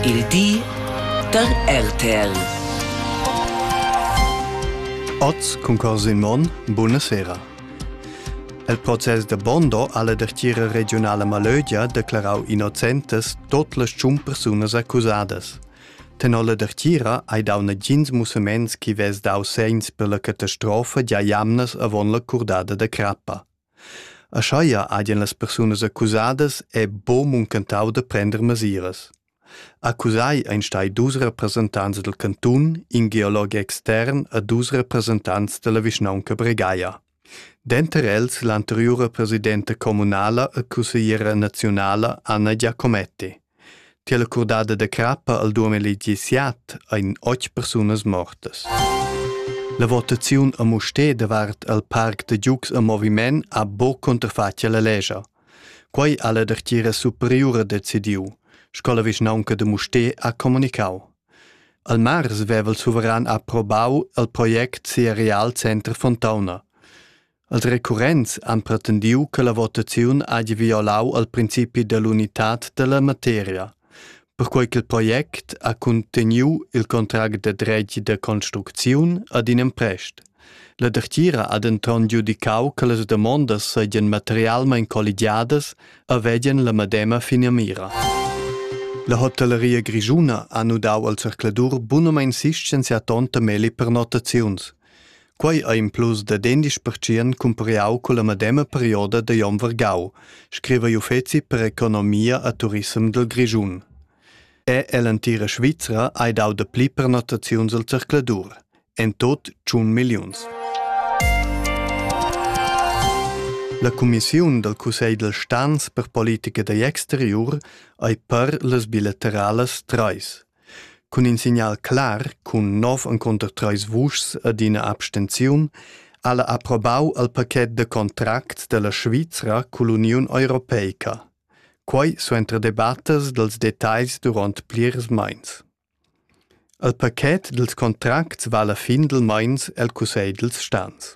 Il di da RTL. Oz cun Corsin Monn, buonasera. Il process da Bondo alla dertiera regionala Malögia declarau innocentas tot las tschun persunas accusadas. Tenor la dertiera hai dau nagins musaments chi vess dau segns per la catastrofa gia jamnas avon la curdada da crappa. Aschia hagien las persunas accusadas è buc muncentau da prender mesiras. Accusai ein stai dus representants dal cantun, in geolog extern e dus representants dalla vischnaunca Bregaia. Denter els l'anteriura presidenta communala e cussegliera naziunala Anna Giacometti. Tiella curdada da crappa al duameli disiat ein otg persunas mortas. La votaziun a Musté davart al parc da giugs a moviment ha bo contrafatg alla legia. Quei ha la dertgira superiura decidiu, sco la vischnaunca de Musté ha comunicau. Al mars veva il suveran approbau il project sia Real Center Fontauna. Els recurrents han pretendiu che la votaziun hagi violau al principi dell'unitad dalla materia, perquei che il project ha cunteniu il contract de dretg de construcziun ad in emprest. La dertgira ha denton giudicau che las damondas seigien materialmein colligiadas e vegien la medema finamira. La hotelleria grischuna ha nudau al zercladur bunamein sistem sia tonta meli per notaziuns. Quei ei implus dad endisch pertschient cumpariau culla medema perioda da Jon Vargau, scriva l'uffeci per economia e turissem dil Grischun. Er ell'entira Svizra ei dau dapli pernottaziuns al zercladur, en tot tschun milliuns. La cumissiun dal Cussegl dal Stans per politica da exteriur ei per las bilateralas trais. Cun in signal clar cun nov encunter treis vuschs ed ina abstenziun ha la approbau il paquet da contracts dalla Svizra cull'Uniun europeica. Quei suenter debattas dals detagls duront plirs meins. Il paquet dils contracts vala fin dil meins el cussegl dils stans.